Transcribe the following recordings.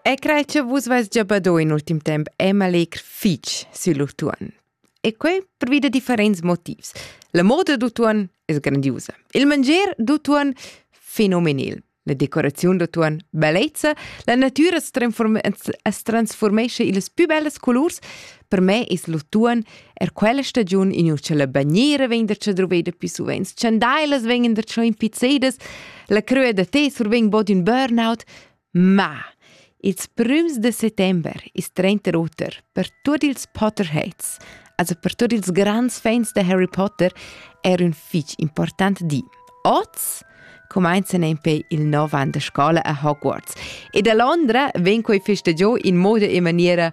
E crai che vus vais già bado in ultim temp Emma Legr fitg sur l'utuon. E quei per via da differents motivs. La moda d'utuon è grandiosa. Il mangier d'utuon fenomenal. La decorazione d'utuon bellezza. La natura es, transform es transformesce ils più bellas colors. Per me es l'utuon Er quella stagiun in uschella bagnera vegn der cha druveda più suvenz, chandailas vengen der schon impizzedas, la crua da te survegn bod ün burnout, ma ils prüms de settember ist 30 Otter per tuot ils Potterheads, also per tutti ils grands fans de Harry Potter, era un fich important di. Oz comincian en pe il nov an de scola a Hogwarts e da Londra ven quei feste giò in moda e maniera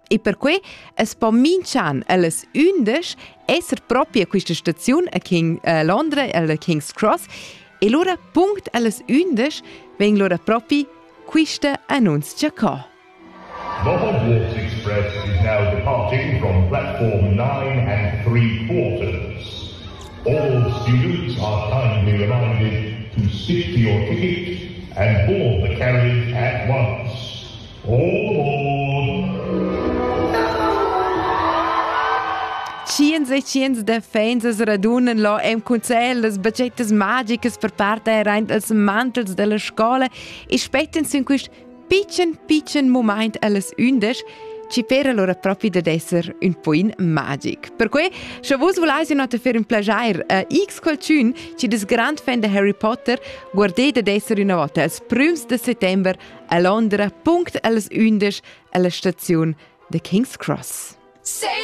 E perquei es po minch'an ellas ündesch esser propria quista staziun a King a Londra alla King's Cross e lura punct ellas ündesch vegn lura propi quista annunzia co. The Hogwarts Express is now departing from platform 9 and 3 quarters. All students are kindly reminded to stick to your ticket and board the carriage at once. Tschiens e tschiens da fans as radunan lo en cuncel las baccettas magicas per parte aint als mantels della scola e spettan sin quist pitschen pitschen moment allas undisch ci per allora propi da esser un poin magic. Perque, sche vos volais in otta fer un plagiair a X qualcun ci des grand fan de Harry Potter, guardete d'esser una volta als prüms de settember a Londra punct als undisch alla staziun da King's Cross. Say